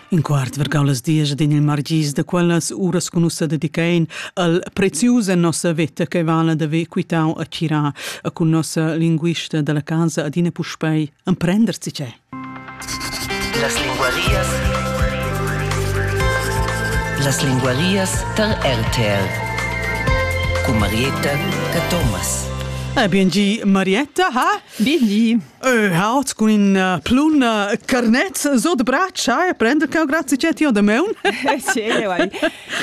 In quart vergau las dies ed in il margis da quellas uras con ussa dedicain al prezius en nossa veta che vala da ve quitau a tira a con nossa linguista dalla casa adina puspei emprender si c'è. Las linguarias Las linguarias tar RTL Cu Marietta ca Thomas. Ah, bien gi, Marietta, ha? Bien gi. Äh, halt cun in uh, plun uh, carnet so de braccia e prender che grazie che ti ho da meun. sì, io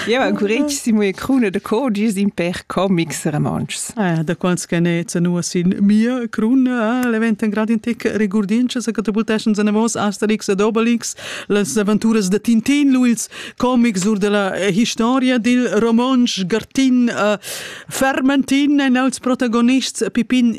io ancurissimo e cruna de codies in per comics romances. Ah, da quants che ne nu sin mia cruna, l'event in grad in tic regurdince se catapultations en vos Asterix ed Obelix, las aventuras de Tintin Luils, comics ur della historia dil romansch Gartin uh, Fermentin en als protagonists Pipin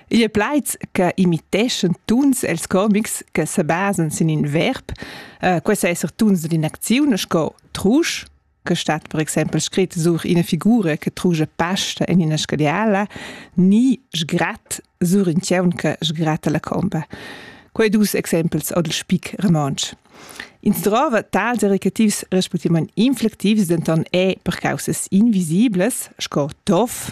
Igl è plaids che imiteschan tuns els comics che se basan sin in verb. Uh, questo è esser tuns d'inaczione sco trusch, che stat per exempel scritto sur una figura che truge pasta in una scadiala, ni sgrat sur in tieun che sgrata la comba. Quei dus exempels od il spic romansch. Ins trova tals erecativs respectivament inflectivs denton e per causas invisibles, sco tof,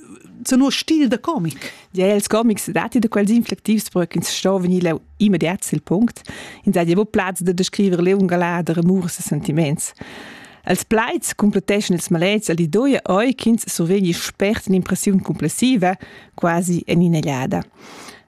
sono stil da comic. Ja, els comics dati da quels inflectivs per ch'ins sto venir leu immediat sil punct. In sa javo plaz da descriver leu un galà da rumurs e sentiments. Els plaids completescen ils malets al di doia oi ch'ins survegni spert l'impressiun complessiva, quasi en inelliada.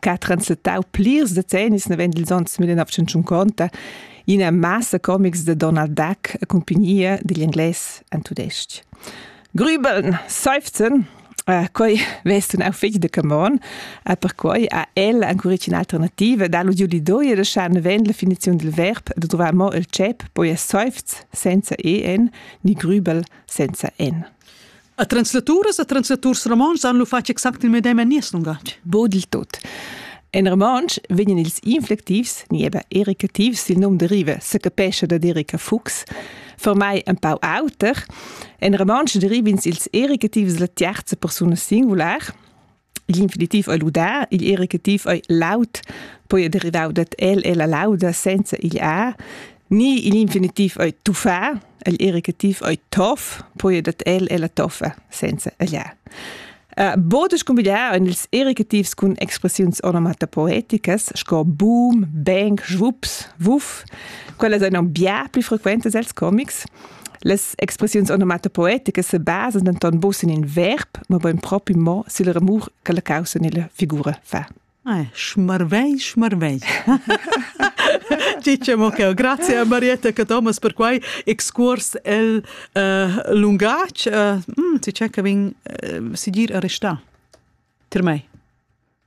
che ha translatau plirs decennis naven dils onns 1950 ina massa comics de Donald Duck a compagnia digl inglés en tudestg. Grübeln, seufzen, Uh, quei vest un au fig de camon, uh, per quei ha el ancora un'alternativa da l'udiu di doi da schan ven la finizion del verb de trovar mo il cep poi es seufz senza en ni grübel senza en. A translaturas e translaturs romontschs han lu fatg exact il medem en nies lungatg. Bod il tot. En romontsch vegnan ils inflectivs, ni eben erecativs, il nom deriva secapescha da Erika Fuchs, formai ein pau auter. En romontsch derivins ils erecativs la tiarza persuna singular, L'infinitiv ei ludà, igl erecativ ei laud, poi ei derivau dad el e la lauda senza igl a, ni igl infinitiv ei tuffà, igl erecativ ei toff, poi ei dad el e la toffa senza igl a. Uh, Bodes combinà en ils erecativs cun expressiuns onomatopoeticas sco boom, bang, schwups, wuff, quellas ein aunc bia pli frequentas els comics. Las expressiuns onomatopoeticas se basan denton buca sin in verb, mobein propi mo sil remur che la caussa nella figura fa. Eh, schmarvei, schmarvei. Dice mo che grazie a Marietta e Thomas per quai excurs el uh, lungatg. Uh, mm, ti c'è che vin uh, si dir a restà. Tir mei.